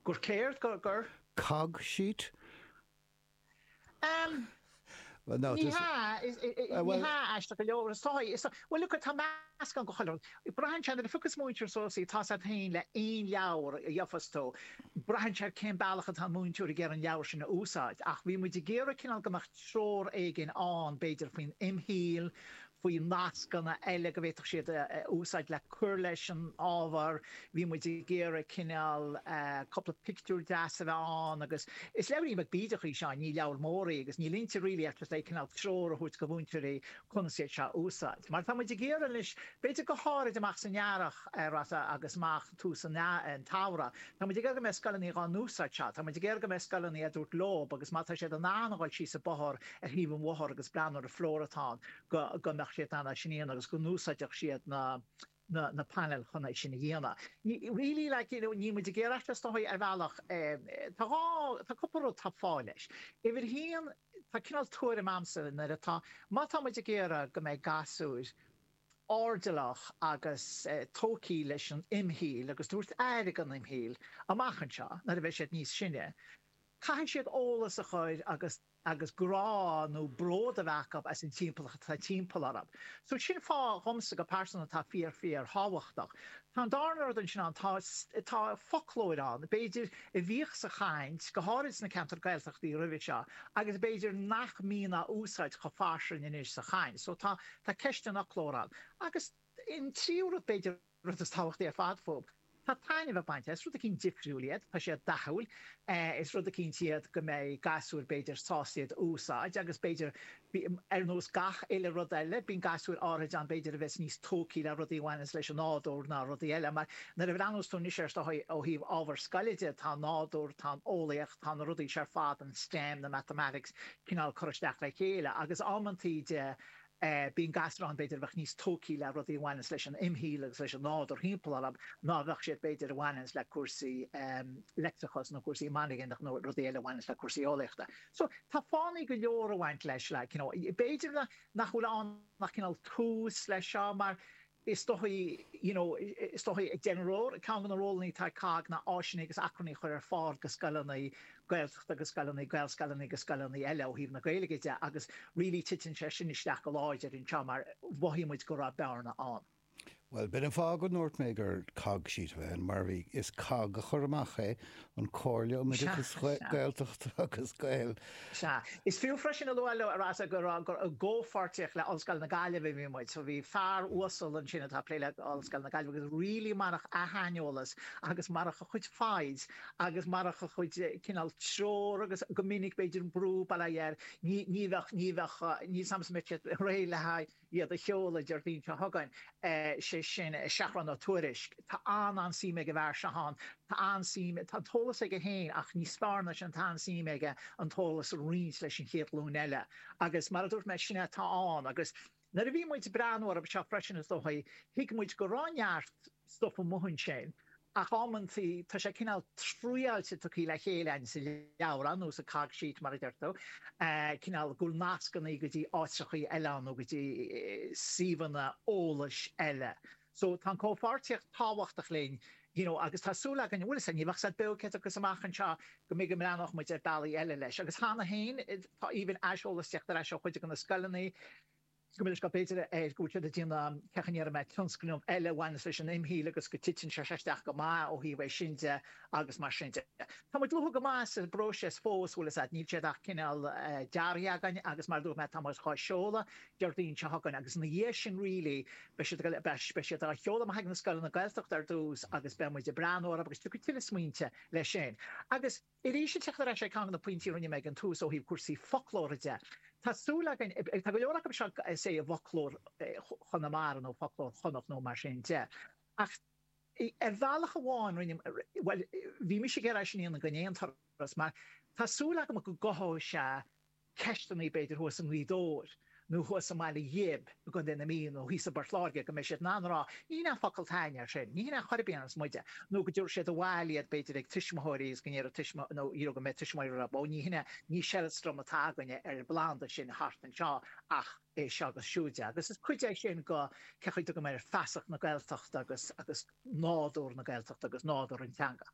gur céard? gur, gur COGG sheet? Em. Well no, Ní hea, is, ní hea aisteach go leor, is dóigh, is dóigh, bhuel look tá meascán go chuile rud, braitheann sé nuair a phiocas múinteoir suas í tá sé ar aon dul le aon leabhar a gheofas tú, braitheann sé ar cén bealach atá an múinteoir ag iarraidh an leabhar sin a úsáid ach bhí muid ag iarraidh cineál go mbeadh treoir éigin ann b'fhéidir faoin imshaoil, faoi nascanna eile go bhféadfadh siad a úsáid le cur leis an ábhar. Bhí muid ag iarraidh cineál cúpla pictiúr deas a bheith ann agus is leabhar iontach bídeach í seo, ní leabhar mór í agus níl inti really ach just é cineál treoir a thabhairt go mhúinteoirí conas iad seo a úsáid. Mar tá muid ag iarraidh anois b'fhéidir go háirid amach san earrach, Rossa, agus amach. tús an tsamhraidh. Tá muid ag iarraidh go mbeidh scoileanna dhá n-úsáid seo. Tá muid ag iarraidh go mbeidh scoileanna ag tabhairt leob agus má tá siad in ann a dhul síos an bothár ar thaobh an bhóthair agus breathnú ar an flóra atá ann go go mbeadh siad in ann é sin a dhéanamh agus go n-úsáidfeadh siad na na painéil chun é sin a dhéanamh. Ní really like you know níl muid ag iarraidh is dóigh ar bhealach eh tá dhá tá cúpla rud tá fáth leis. Uimhir haon tá cineál tuairim a'msa nuair atá má tá muid ag iarraidh go mbeidh gasúir airdeallach agus tógthaí leis an imshaoil agus tabhairt aire dhon imshaoil amach anseo nuair a bheidh siad níos sine. Caithfidh siad eolas a chur agus agus grá nó bród a bheith acu as an timpeallacht atá timpeall orthu. So sin fáth dhomsa go pearsanta atá fíor fíor thábhachtach. Tá an darna rud ansin ann, tá tá foclóir ann, b'fhéidir a bhíodh sa chaint, go háirid sna ceantair Gaeltachta roimhe seo agus b'fhéidir nach mbíonn á úsáid chomh fairsing anois sa chaint. So tá Tá ceist an fhoclóir ann. Agus an tríú rud, b'fhéidir an rud is tábhachtaí ar fad fúb, tá taitneamh le baint as. Rud eicínt difriúil iad, tá siad dathúil, is rud eicínt iad go mbeidh gasúir, b'fhéidir, sásta iad a úsáid agus b'fhéidir, ar nós gach uile rud eile, bíonn gasúir áirithinte ann, b'fhéidir, a bheas níos tógthaí le rudaí a bhaineanns leis an nádúr ná rudaí eile. Mar, nuair a bhreathnaíos tú anois air seo ó thaobh ábhar scoile de, tá an nádúr, tá an eolaíocht, tá na rudaí seo ar fad, an STEM, na mathematics, cineál curtha isteach le chéile agus amanntaí de, Bíonn gasúir ann b'fhéidir a bheadh níos tógthaí le rudaí a bhaineanns leis an imshaoil agus leis an nádúr timpeall orthu ná a bheadh siad b'fhéidir a bhaineanns le cúrsaí leictreachais nó cúrsaí magnetic nó rudaí eile a bhaineanns le cúrsaí eolaíochta. So tá fáthannaí go leor ag baint leis like you know b'fhéidir nach bhfuil ann ach cineál tús leis seo mar Is dóigh, you know, is dóigh ag déanamh rud, ceann de na rólannaí atá ag COGG ná áiseanna agus acmhainní a chur ar fáil go scoileanna Gaeltachta agus scoileanna, Gaelscoileanna agus scoileanna eile ó thaobh na Gaeilge de agus really titeann sé sin isteach go láidir anseo mar mhothaigh muid go raibh bearna ann. Bhuel, b'in an fáth go ndúirt mé gur COGG sheet a bheadh ann mar bhí, is COGG a chuir amach é an Chomhairle um Oideachas Gaeltachta agus Gael. Sea. Is fiú freisin a lua leo ar ais gur i gcomhpháirtíocht le Ollscoil na Gaillimhe a bhí muid. So bhí fear uasal ansin atá ag plé le Ollscoil na Gaillimhe agus really marach a shaineolas agus marach a chuid foighid agus marach a chuid cineál treoir agus go minic b'fhéidir brú, bail ó Dhia air, ní bheadh, ní bheadh, ní shamhlaímse go mbeadh sé réidh le haghaidh. iad a sheoladh Déardaoin seo chugainn, sé sin Seathrún Ó Tuairisg. Tá an-an-suim ag an bhfear seo ann. Tá an-suím, tá an t-eolas aige féin ach níos fearr ná sin tá an-suim aige an t-eolas a roinnt leis an chéad ghlúin eile. Agus mar a dúirt mé, sin é atá ann. Agus nuair a bhí muid ag breathnú orthu seo freisin is dóigh, thuig muid go raibh neart, stuff amuigh ansin ach amantaí tá sé cineál triáilte tugthaí le chéile againn sa leabhrán nó sa cog sheet mar a deirtear cineál go bhfuil nascannaí go dtí áiteachaí eile ann nó go dtí suíomhanna eolais eile so tá an comhpháirtíocht tábhachtach linn you know agus tá súil againn bhfuil fhios a't ní bheadh siad beo céadta agus amach anseo go mbeidh go mbreathnódh muid ar bealaí eile leis agus cheana féin tá aoibhinn aiseolas teacht ar ais ó chuid de na scoileanna go minic go mb'fhéidir go bhfuil siad ag déanamh cén chaoi a ndéarfaidh mé tionscnamh eile a bhaineas leis an imshaol agus go titeann sé isteach go maith ó thaobh é sin de agus mar sin de. Tá muid luath go maith sa bpróiseas fós, bhfuil fhios a't, níl siad ach cineál dearaithe againn agus mar a dúirt mé tá muid dhá sheoladh Déardaoin seo chugainn agus ina dhiaidh sin really beidh siad ag, beidh siad á sheoladh amach ag na scoileanna Gaeltachta ar dtús agus beidh muid ag breathnú orthu agus tiocfaidh tuilleadh smaointe leis sin agus Arís, ag teacht ar ais ag ceann de na pointí a rinne mé ag an tús ó thaobh cúrsaí foclóra de, tá súil againn, tá go leor acu seo is é i bhfoclóir Chonamara nó foclóir Chonnacht nó mar sin de, ach ar bhealach amháin rinne, bhuel, bhí mise ag iarraidh é sin a dhéanamh d'aon turas mar tá súil agam go gcothóidh sé, ceisteanna b'fhéidir thuas i nGaoth Dobhair nó thuas i mBaile Ghib i gContae na Mí nó thíos i bPort Láirge go mbeidh siad in ann a rá, ní hin é an focal atá againne air sin, ní hin é chor ar bith a dhéanas muide, nó go dtabharfaidh siad abhaile iad b'fhéidir ag tuismitheoirí agus go ndéarfaidh tuismitheoirí nó díreach go mbeidh tuismitheoirí ag rá ó ní hin é, ní seileastram atá againne ar an bplanda sin thart anseo ach é seo agus siúd de agus is cuid é sin de cé chaoi a dtugann muid air feasacht na Gaeltachta agus agus nádúr na Gaeltachta agus nádúr an teanga.